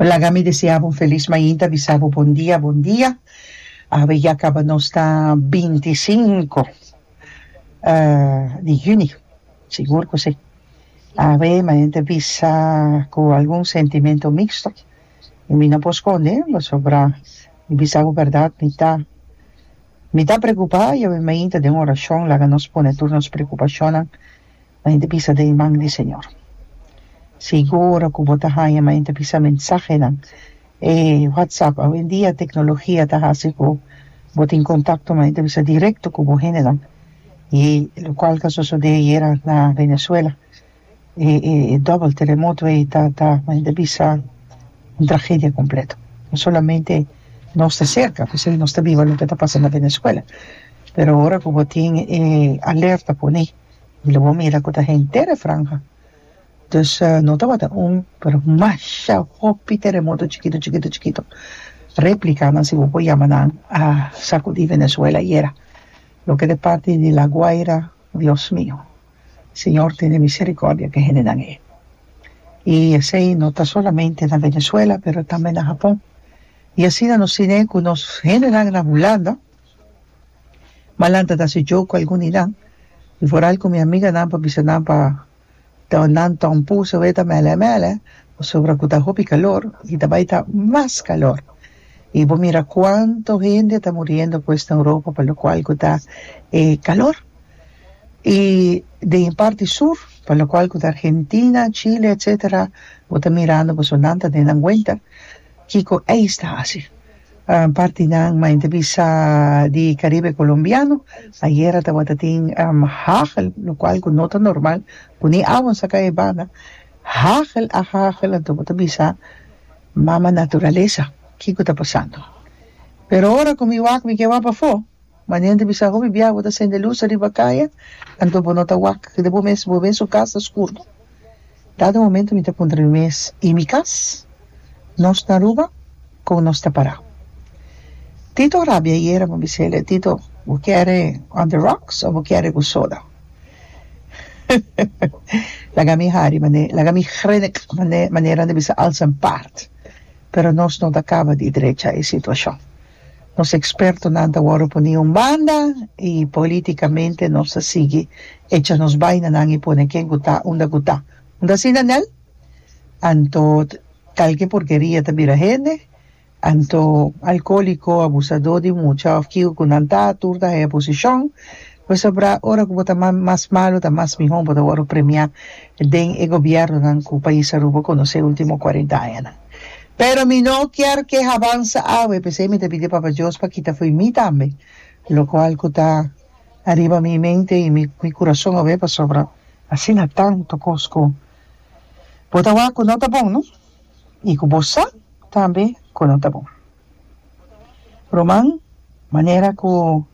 Laga mi desea bo un felis mainta bisa bo bon dia bon dia awe ya kaba nos ta binti sinku di hüni sigur ku si awe mainta bisa ku algun sentimentu mixto i mi no por skonde pasobra mi bisa bo bèrdat mi ta mi ta preokupá i awe mainta den orashon laga nos pone tur nos preokupashonnan. M'a inta bisa den e man di Señor. Sigu ora cu bo ta haña m'a inta bisa mensahenan, e WhatsApp. Awendia tecnologia ta haci cu bo tin contacto m'a inta bisa directo cu bo hendenan, y lo cual ta sosode ayera na Venezuela. E e e double teremoto ey ta ta m'a inta bisa un tragedia completo. No solamente nos ta cerca, p'esey nos ta biba loke ta pasa na Venezuela. Pero ora cu bo tin e alerta pone. y lo bo mira cu ta henter e franja dus no tabata un pero masha hopi teremoto chikito chikito chikito replicanan si bo por yama nan a sacudi Venezuela ayera loke ta parti di La Guaira Dios mio Señor tene misericordia di e hendenan ey y esey no ta solamente na Venezuela pero tambe na Japón y asina nos tine cu nos hendenan na Hulanda Malan ta da su djou cu algun di nan, y foral cu mi amiga nan pa bisa nan pa taw nan taw un puso wey ta mele a mele, pasobra cu ta hopi calor y ta bay ta mas calor. Y bo mira cuanto hende ta muriendo pues na Europa pa locual cu ta e calor. Y den e parti sur, pa locual cu ta Argentina, Chile, etcetera, bo ta mirando boso nan ta den nan winter. Kiko ey sta haci? Partinan ma inter bisa di Caribe Colombiano ayera tabata tin hagel locual cu no ta normal cu ni awa a saca e banda hagel a hagel anto bo ta bisa mama naturalesa kiko ta pasando pero ora cu mi wak mi ke wak bafo manera inter bisa hopi bia bo ta sende luz riba caya anto bo no ta wak kede bo mes bo ven su cas ta scur. Kada momento mi ta puntra mi mes, I mi kas? Nos na Aruba? Kon nos ta para? Tito a rabia ayera bo bisele, Tito, bo kere on the rocks o bo kere ku soda? Laga mi hari mane, laga mi hrenk mane, manera nan ta bisa alsa en part. Pero nos no ta kaba di drecha e situashon. Nos ekspertonan ta wòrdu puní un banda i polítikamente nos ta sigui echa nos bainanan i pone ken ku ta unda ku ta. Unda asina nel? Anto kalke porkeria ta bira hende? Anto alkóliko, abusadó di mucha òf kiko ku nan ta tur ta haña posishon? Pasobra ora ku bo ta mas malu ta mas mihó bo ta wòrdu premiá den e gobièrnunan ku pais Aruba konosé último kuarenta añanan. Pero mi no kier ke habansa awe, p'esei mi ta pidi Papa Dios pa kita fo'i mi tambe, lokual ku ta ariba mi mente i mi kurason awe, pasobra asina tantu kos ku bo ta wak ku no ta bon, no? I ku bo sa tambe ku no ta bon. Ruman, manera ku.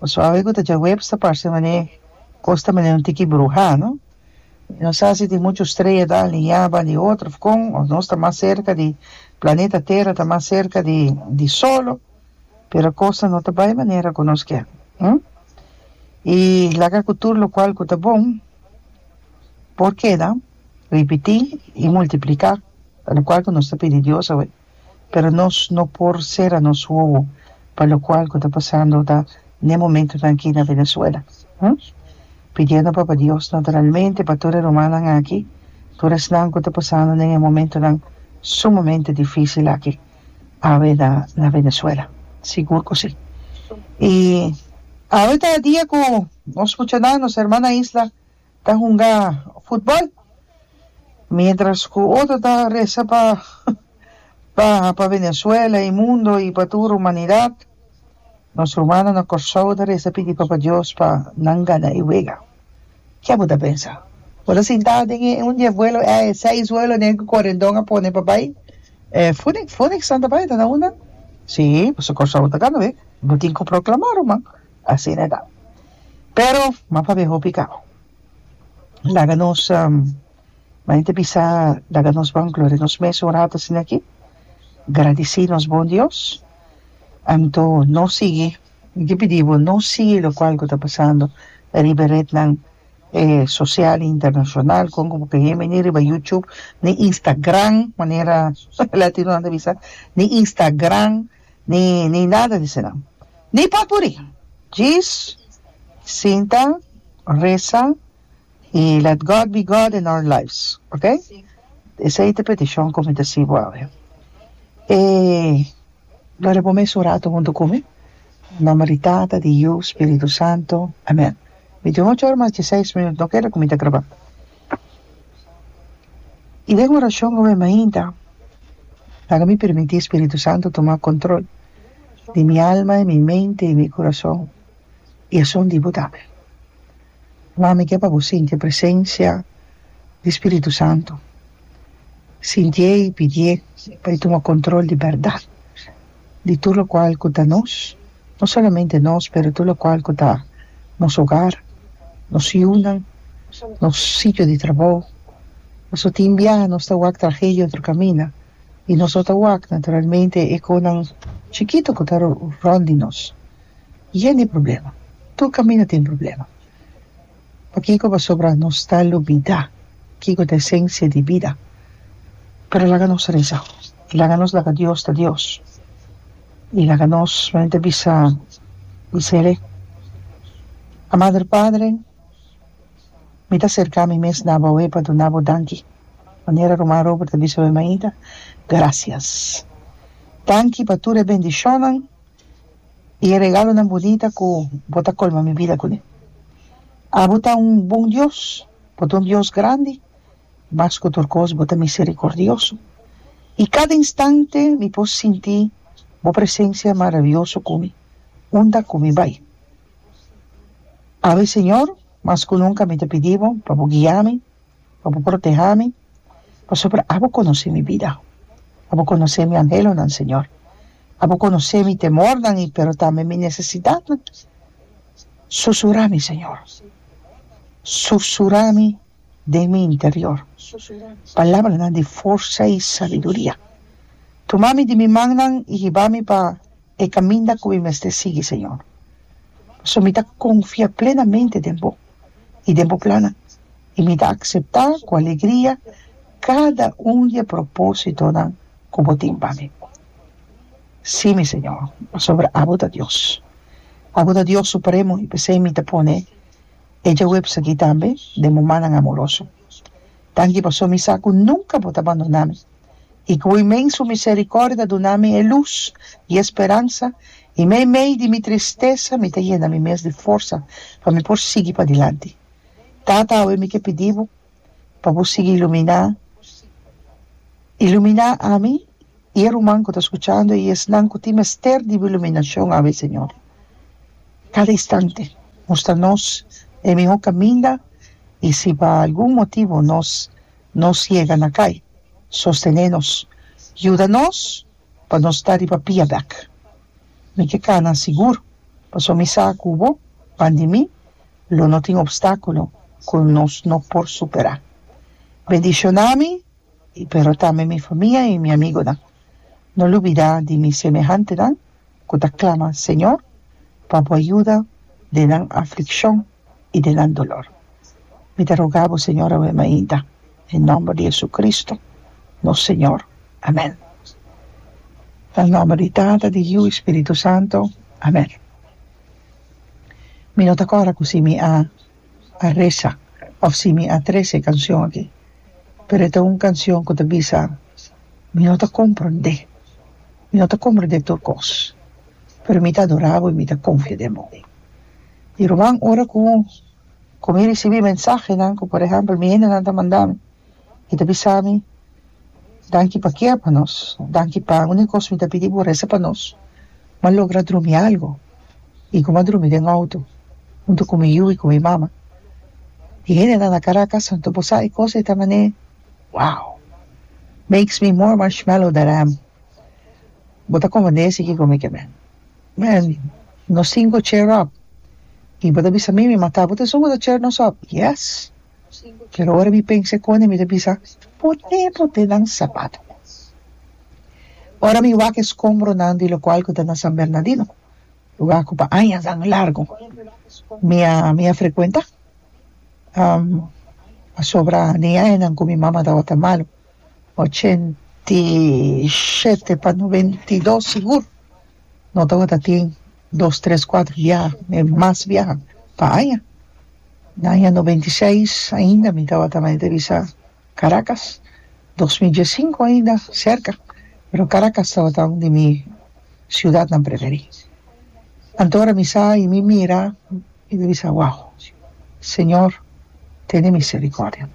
Bo sabe cu ta djaweps ta parce manera cos ta manera un tiki bruha no? y no sa si tin mucho strea ta alinea ba di otro of con of nos ta mas cerca di planeta tera ta mas cerca di di solo pero cosnan no ta bay manera cu nos kier hm y laga cu tur locual cu ta bon por keda ripiti y multiplica locual cu nos ta pidi Dios awe. pero nos no por sera nos wowo pa lokual ku ta pasando ta ne momentunan aki na Venezuela, hm. Pidiendo Papa Dios naturalmente pa tur e rumannan aki, tur esnan ku ta pasando den e momentunan sumamente difísil aki awe na na Venezuela. Sigur ku si. I awe ta e dia ku nos muchanan, nos hermannan isla. Ta hunga futbol mientras cu otro ta reza pa baha pa Venezuela y mundo y pa tur humanidad nos rumannan na Corsou ta reza pidi Papa Dios pa nan gana e wega. Ke bo ta pensa? Bo ta sinta den e un dies vuelo eh e seis vuelo den cu corendon a pone pa bay eh Phoenix Phoenix nan ta bay ta na una? Si pasobra Corsou ta gana wega. Bo tin cu proclama ruman. asina ta pero m'a pabia hopi kau laga nos manen ta bisa laga nos bangloria nos mes un rato asina aki gradisi nos bon dios anto no sigui mi ta pidi bo no sigui locual cu ta pasando riba e retnan e social y internacional con cu bo ta bieni ni riba YouTube ni Instagram manera latinonan ta bisa ni Instagram ni ni nada di esnan. Ni papuri. Djis sinta, resa y let God be God in our lives, ok? Esey ta peticion cu mi ta hasi bo awe. E Gloria bo mes un rato hunto cu mi. Nomber di Tata, di Yu, Spiritu Santo. Amen. Mi tin ocho ora mas diesseis minuut, no keda cu mi ta graba. i den orashon ku mi mainta laga mi permití spiritu santu tuma kontrol di mi alma i mi mente i mi kurason i asun di bo tambe mama mi ke pa bo sinti e presensia di spiritu santu sintié i pidié pa i tuma kontrol di bèrdat. di tur lokual ku ta nos, no solamente nos pero tur lokual ku ta nos ogar, nos yunan, nos sitio di trabou, pasobra tin bia nos ta wak trahe di otro kaminda i nos no ta wak naturalmente e konan chikitu ku ta rònt di nos yen di problema, tur kaminda tin problema. Pakiko? Pasobra nos ta lubidá kiko ta esensia di bida. Pero laga nos resa, laga nos laga Dios ta Dios, i laga nos solamente bisa bisa el'e, A Mader Padre, mi ta serká mi mes na bo awé pa duna bo danki, manera ruman Robert a bisa awé mainta, Grasias. Danki pa tur e bendishonnan. I e regalonan bunita ku bo ta kolma mi bida kuné. Abo ta un bon Dios, bo ta un Dios grandi, mas ku tur kos bo ta miserikordioso. I kada instante mi por sinti bo presensia maravioso ku mi, unda ku mi bai. Abes, Señor, mas ku nunka mi ta pidi bo pa bo guia mi. pa bo protehá mi, pasobra abo konosé mi bida, abo konosé mi anhelonan, Señor. Abo konosé mi temornan i pero tambe mi nesesidatnan. Susurá mi, Señor, susurá mi den mi interior palabranan di forsa i sabiduria. Tuma mi di mi mannan i hiba mi pa E kaminda ku mi mester sigui, Señor. Pasobra mi ta konfia plenamente den Bo i den Bo plannan, i mi ta akseptá ku alegria kada un di e propósitonan ku Bo tin pa mi. Sí, mi Señor, pasobra abo ta Dios. Abo ta Dios supremo i p'esei mi ta pone e djawebs akí tambe den bo mannan amoroso. Danki pasobra mi sa ku nunka Bo ta bandonami. i ku imen su miserikordia duna mi e lus i e speransa, i mei mei di mi tristesa mi ta yena mi mes di forsa pa mi por sigui padilanti. Tata, awe mi ke pidi bo pa bo sigui iluminá iluminá ami i e ruman ku ta skuchando i esnan ku tin mester di bo iluminashon awe, Señor. Kada instante mustra nos e mihó kaminda i si pa algun motibu nos. Nos yega na kai. Sostené nos. Yuda nos pa nos ta riba pia bek. Mi ke kana sigur, paso mi sa ku bo, pan di mi, lo no tin opstákulo ku nos no por superá. Bendishoná mi, pero tambe mi famia i mi amigonan. No lubidá di mi semehantenan. ku ta klama, Señor, pa Bo a yuda den nan aflikshon i den nan dolor. Mi ta rogá Bo, Señor, awe mainta, den nòmber di JesuCristo, nos Señor. Amèn. Na nòmber di Tata, di Yiu i Spiritu Santo. Amèn. Mi no ta kòrda ku si mi a. a resa of si mi a trece cancion aki pero e ta un cancion cu ta bisa mi no ta comprende mi no ta comprende tur cos pero mi ta adora bo y mi ta confia den bo y ruman ora cu cu mi ricibi mensahenan cu por ejemplo mi hendenan ta manda mi i ta bisa mi, Danki pa kia pa nos? Danki pa un e kos mi ta pidi bo resa pa nos. Mi a logra drumi algu i ku mi a drumi den outo huntu ku mi yu i ku mi mama. E hendenan na Karakas a ntopo sa e kos e ta manera, Wow! Makes me more marshmallow that I am. Bo ta konfundesi kiko mi ke ben. Mira, nos sinku cheer up i bo ta bisa mi mi mata bo. Ta esun ku ta cheer nos up? Yes! Pero ora mi pensa e kone mi ta bisa, Pone pote nan sapato. Ora mi wak e skombronan di lokual ku ta na San Bernadino, luga ku pa añanan largu mi a mi a frekuentá, pasobra den e añanan ku mi mama tabata malu, ochenta i shete pa noventa i dos sigur. no tabata tin dos tres cuatro biaha me mas biaha pa aña na aña noventa y seis ainda mi tabata mente bisa Caracas dos mil dies cinco ainda cerca pero Caracas tabata un di mi ciudadnan preferi anto ora mi sa y mi mira mi ta bisa wao señor tene misericordia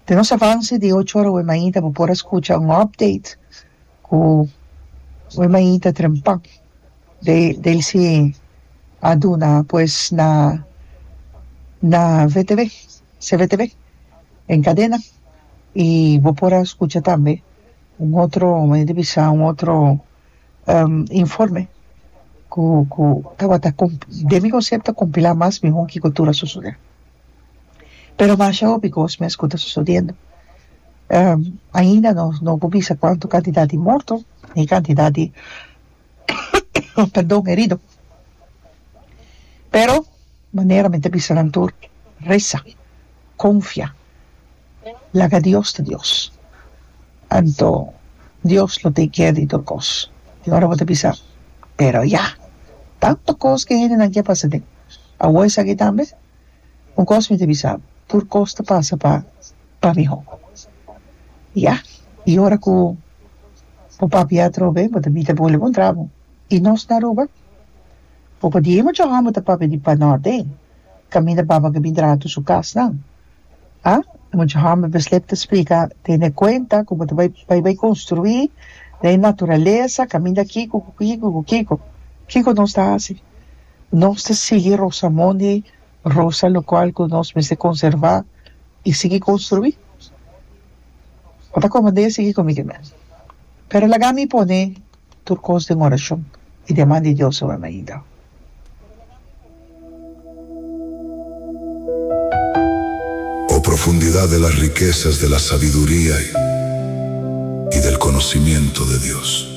den nos avance di ocho ora awe mainta bo por a scucha un update ku e maita trempa de del si a duna pues na na vtv cvtv en cadena y bo por a scucha tambe un otro maya di bisa un otro informe ku ku tabata com den mi concepto compila mas miho kico tur a sucede. Pero masha hopi cos mes cu ta sosodiendo. Ainda no no por bisa cuanto cantidad di morto ni cantidad di perdon herido. Pero manera mi ta bisa nan tur reza, confia, laga Dios ta Dios. Anto Dios lo take care di tur cos. Y ora bo ta bisa pero ya! Tanto cos cu e hendenan ke a pasaden. Awor esaki tambe un kos mi ta bisa bo, tur kos ta pasa pa pa mihó. Ya, i ora ku bo papia atrobe, bo ta bita bo leba un tragu. I nos na Aruba, bo pa diei mucha hòmber ta papia di panòrte, kaminda baba ke bin traha tur su kasnan. A, e mucha hòmber beslep ta splika, tene kuenta ku bo ta bai bai bai konstruí den e naturalesa, kaminda kiko ku kiko ku kiko. Kiko nos ta hasi? Nos ta sigui Rosamondi Rosa lokual ku nos mester konservá i sigui konstruí. Bo ta komand'é a sigui ku mi kemen. Pero laga mi pone tur kos den orashon i demanda di Dios ora na ida. O profundidat del a rikesas del a sabiduria i del konosimiento de Dios.